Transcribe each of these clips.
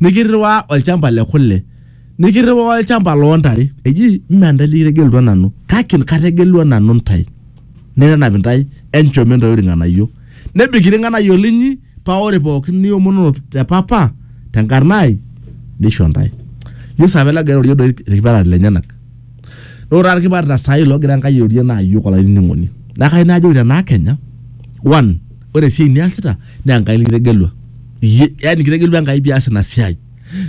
nikirriwaa olchamba le kule nikirriwaa olchamba loo ntare eji mme ntae likitegelutua nanu kake kategelua nanu ntae nenap intae enchom intae irng'anayio nebik irng'anayio linyi paa ore pookin niomonono te papa tenkarna ai nisho ntae yesu apa ele ogira airorie doi irkipaareta lenyenak naa ore taata irkipaareta saai loogira enkai airorie naa iyiok olainining'oni naa kayieu najoki tenaa kenya one ore esiai niasita naa Enkai nikitegelua iyie, yani kitegelua Enkai pias ina siai,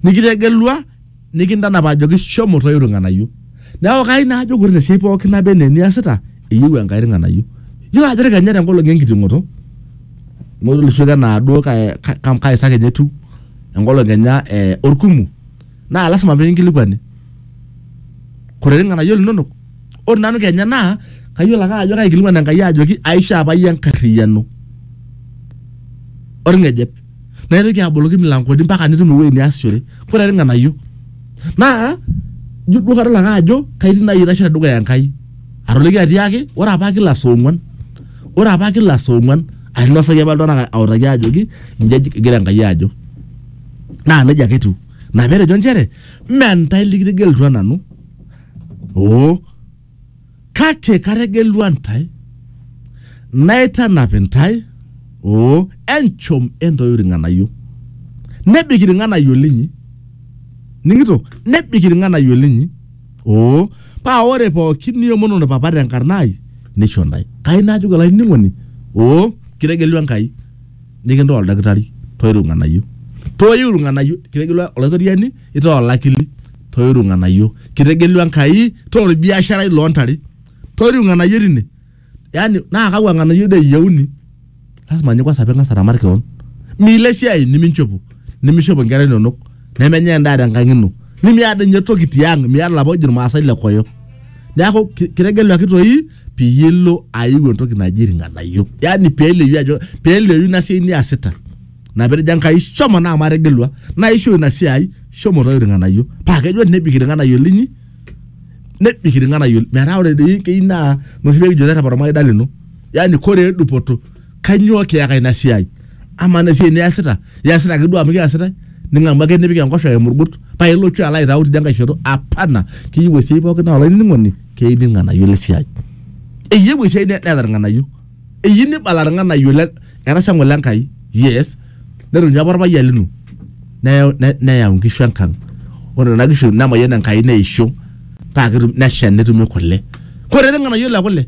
nikitegelua nikintanap ajoki shomo toiu irng'anayio. Neeku kai naa ajoki ore tesiai pookin naba enaa eniasita eyieu Enkai irng'anayio. Iyiolo ajo ore kenya tenkolong enkiting'oto amu ore oshi enaa duo kai kai saa kenya etiu enkolong kenya orkumu naa lazima pekinkilikuani, korere irng'anayio linonok? ore nanu kenya naa kayiolo ake ajo kaikilikuan enkai ajoki aishaa apa iyie enkarriyiano orng'ejep naitoki aboloki milankoni mpaka nitum ewueji niasishore kore irng'anayio naa ijo duo kadol ake ajo kaitii naaji aitashe tedukuya enkai atoliki atiaki ore apa kila saa ong'uan ore apa kila saa ong'uan ainosaki apa iltung'anak autaki ajoki inji eji egira enkai ajo naa nejia ake etiu ina petejo inchere mme ntae likitegelutua nanu. oo kake kategelua ntae naitanap intae oo enchom entoiu irng'anayio nebik irng'anayio linyi ning'ito nebik irng'anayio linyi oo paa ore pookin niomonono papa tenkarna ai nisho ntae kai najoki olainining'oni oo kitegelua Enkai nikintaa oldakitari toiru irng'anayio toiu irng'anayio kitegelua olaitoriani itaa olakili toiru irng'anayio kitegelua Enkai taa orbiasharai loontare toiru irng'anayio tine yani naa kakwa ng'anayio doi eyieuni lazima ninye kwanza ping'as aramat kewon miilo esiai niminchopo nimishopo inkera inonok nemenyai endaa tenkang ino nimiata inye toki tiang miata ilapa ojo irmaasai le koyo neeku ki- kitegeluaki toi peyie ilo aiu entoki naji irng'anayio yani peleyu ajo peleyu ina siai niasita ina petejo Enkai shomo naa amu ategilua naisho ina siai shomo toi irng'anayio paa kejo nebik irng'anayio linyi nebik irng'anayio metaa ore doi keyieu naa noshi pekijo terrepa ormaida lino yani koree dupoto kanyoo kiyaka ina siai amaa ina siai niyasita iyasita ake duo amu kiyasitae ning'amu ake nipik enkosh aimu irkut paa ilotu alo aitau tidia nkae shoto apana keyieu esiai pookin naa olainining'oni keyieu irng'anayio lesiai eyieu esiai ne neeta irng'anayio. eyieu nibala irng'anayio le ena shang'u le Nkai yes netonyu apa orpayian lino neyau ne- neyau nkishu enkang ore nena kishu nemayian Enkai neisho paa ketum nesha netumi kule kore irng'anayio le kule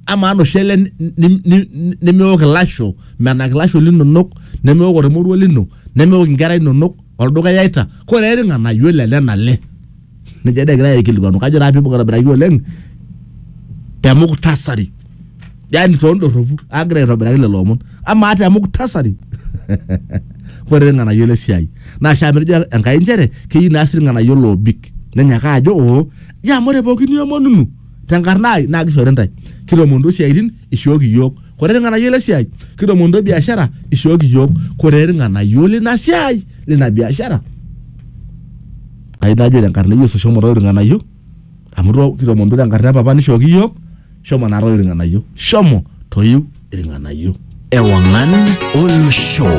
amaa noshi ale ni- ni- ni- nemeok ilasho menak ilasho linonok nemeok ormoruo lino nemeok inkera inonok olduka iyaita kore irng'anayio le nena ale. Ninye dee egirai aikilikuanu kajo taa piibung aitobiraki oleng te muktasari. Yaani too ndorropu agira aitobiraki lelo omon. Amaa te muktasari ore ilng'anayio le siai. Naa shaa amu etejo Enkai inchere keyieu naa sii ilng'anayio loobik. Nenyaka ajo oo nchoo amu ore pooki niomonunu tenkarna ai naa kishori intae. Kitoomonutuo isiaitin ishooki iyiook. Kore ilng'anayio le siai kitoomonutuo biashara ishooki iyiook. Kore ilng'anayio lina siai lina biashara Ai najo te nkarna e Yesu shomo toi irng'anayio amu to kitomonutuo te nkarna e papa nishooki iyiook shomo naa toi irng'anayio shomo toiu irng'anayio. Ewang'an olosho.